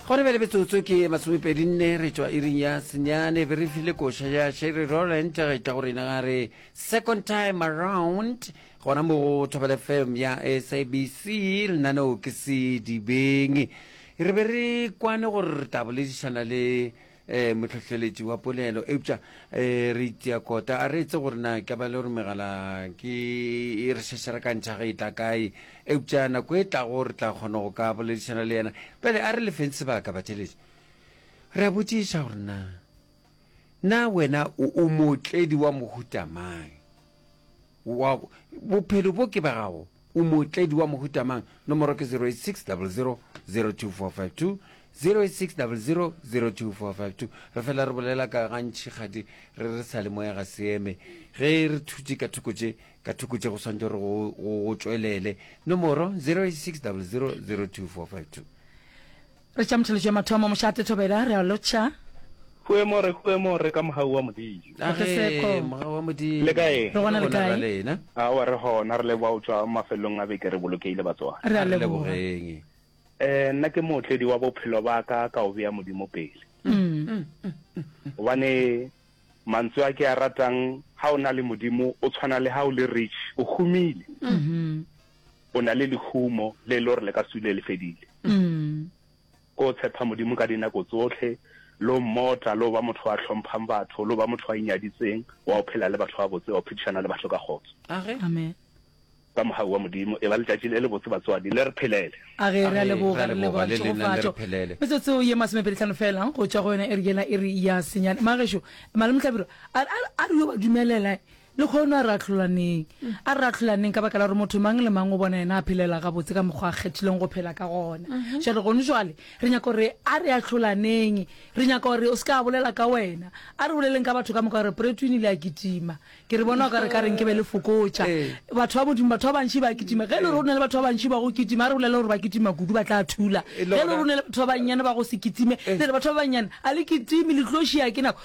go re be le metsotso ke masomepedi nne re tšwa iring ya senyane be re file koša ya sherry roland ga e tla go rena ga re second time around gona mo go thobele fm ya sabc lenaneo ke se dibeng re be re kwane gore re tla boledišana le um mohlohleletši wa polelo eupša um re itia kota a re etse gore na ka ba le gore megala ke e re šešera ka ntšha ge e tla kae eupša nako e tlago re tla kgona go ka boledišana le yena pele a re lefeng sebaka batšheletši re a botšiša gore na na wena o mootledi wa mohutamang bophelo bo ke ba gago O mootledi wa mohuta mang? Nomoro ke 086000024520 086000024520 Re fela re bolela ka gantši kgadi re re sa le moya ga se eme. Ge re thutše ka thoko tše ka thoko tše go swantšo re go tšwelele. Nomoro 086000024520. Re tša motheletšo ya mathomo, mošate thobela, re a lotšha. Hue mo re, hue mo re ka mogau wa Modimo. A ge mogau wa Modimo. Le kae? Re gona le kae? Aowa re gona, re leboga go tšwa mafelelong a beke re bolokeile batswadi. Re a lebogeng. Eh nna ke mootledi wa bophelo ba ka ka o bea Modimo pele. Gobane mantswe a ke a ratang ha o na le Modimo o tshwana le ha o le rich o humile. O na le lehumo le e le gore le ka sule le fedile. Ko tshepa Modimo ka dinako tsotlhe, lo mmota, lo ba motho a hlomphang batho, lo ba motho a inyaditseng, wa o phela le batho ba botse, wa o phedišana le batho ka kgotso. Amen. Ka mogau wa Modimo, e ba letšatši le le botse batswadi, le re phelele. Age, re a leboga, re leboga le tšhegofatšo. Metsotso ye masomepedi tlhano fela go tšwa go yona iri yela iri ya senyane. Magešo, Malome Hlabirwa, a re yo ba dumelela. Lekgono a re ahlolaneng. A re ahlolaneng ka baka la gore motho mang le mang o bona yena a phelela gabotse ka mokgwa a kgethileng go phela ka gona. Še re gone jwale re nyaka gore a re ahlolaneng. Re nyaka gore o se ka a bolela ka wena. A re boleleng ka batho ka moka gore Preetwin ile a kitima. Ke re bona o ka re ka reng ke be le fokotša. Batho ba Modimo, batho ba bantši ba kitima. Ge e le gore o na le batho ba bantši ba go kitima, a re bolele gore ba kitima kudu ba tla thula. Ge e le gore o na le batho ba bannyane ba go se kitime, le re batho ba bannyane a le kitime, le tlo šia ke nako.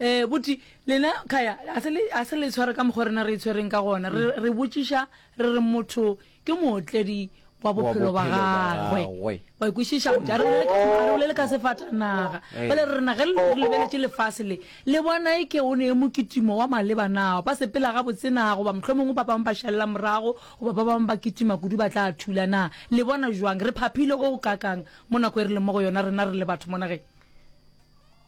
um boti lena kaya a se le tshware ka mokgwa rena re e tshwereng ka gona re botšiša re re motho ke mootledi wa bophelo ba gagwe wa ikwešiša boti a re bolele ka sefatanaga bale re rena ge le lebeletše lefase le le bona e ke o ne e mokitimo wa maleba na ba sepela ga botsena goba mohlho mongwe ba bangwe ba šalela morago goba ba bangwe ba kitima kudu ba tla thula na le bona jwang re phaphile go kakang mo nako e re leng mo go yona rena re le batho mo nageng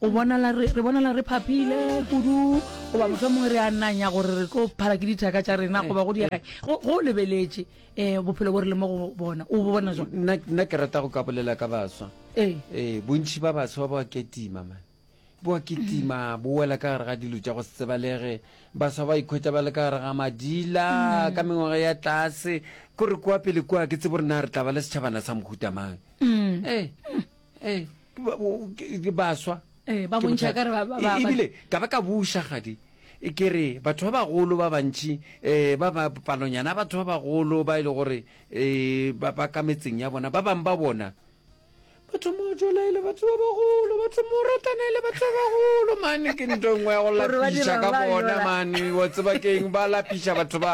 O bonala re re bonala re phaphile kudu goba motho mongwe re a nanya gore re tlo phala ke dithaka tša rena mm. goba go diega go go lebeletše eh bophelo bo re le mo go bona o bona jwa nna nna ke rata go ka bolela ka baswa eh eh bontši ba baswa ba ketima man bo ketima bo wela ka gare ga dilo tša go sebalege baswa ba ikhwetsa ba le ka gare ga madila mm. ka mengwaga ya tlase ko re kwa pele kwa ke tsebo rena re tla ba le setšhabana sa mohutamang mm. ee eh. ee ke baswa ee ba bontšha ka re ba- ba- ba- E- ebile ka ba ka buša gadi e ke re batho ba bagolo ba bantši um ba ba palonyana ya batho ba bagolo ba e le gore um ba ba ka metseng ya bona ba bangwe ba bona ba thoma go jola e le batho ba bagolo ba thoma go ratana e le batho ba bagolo mane ke nto nngwe ya go Gore ba lapiša dira ka ba bona yola. mane wa tseba keng ba lapiša batho ba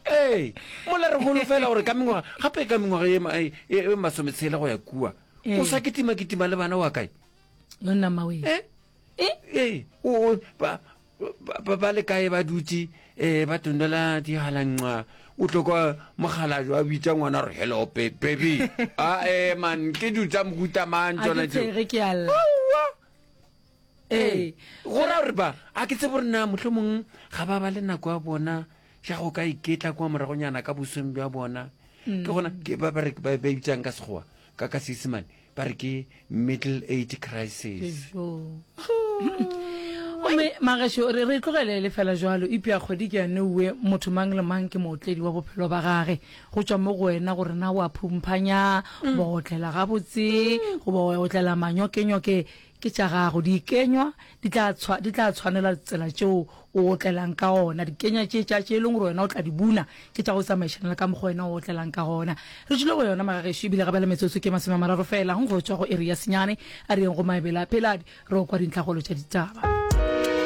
ee mola re holofela gore ka mengwaga gape ka mengwaga e ma- e- e masometshele go ya kua o sa kitima kitima le bana wa kae monna mawe eh eh, eh o ba ba le kae ba dutse eh ba tondela di halanqa o tlokwa mogalajo a bitsa ngwana re hello baby a ah, eh man ke dutsa mohuta mang tsona tse ke alla ee go ra gore ba a ke tse borena motlho mongwe ga ba ba le nako ya bona ja go ka iketla kwa moragonyana ka bosong bja bona ke gona ke ba ba re ba ba bitsang ka sekgowa ka ka seesemane ba re ke middle age crisis ome magesho re re tlogelele fela jalo ipea kgwedi ke yane uwe motho mang le mang ke mootledi wa bophelo ba gage go tšwa mo go wena gore na wa phumphanya ba otlela gabotse goba wa otlela manyokenyoke Ke tša gago. Dikenywa di tla, di tla tshwanela tsela tšeo o otlelang ka gona. Dikenywa tše tša, tše e leng gore wena o tla di buna, ke tša go tsamaišana le ka mokgwa wena o otlelang ka gona. Re tšwile go yona, magagešo, e bile gabela metsotso ke masome a mararo feela go tšwa go iri ya senyane. A re yeng go Maebele a Peladi re yo kwa dintlhakgolo tša ditaba.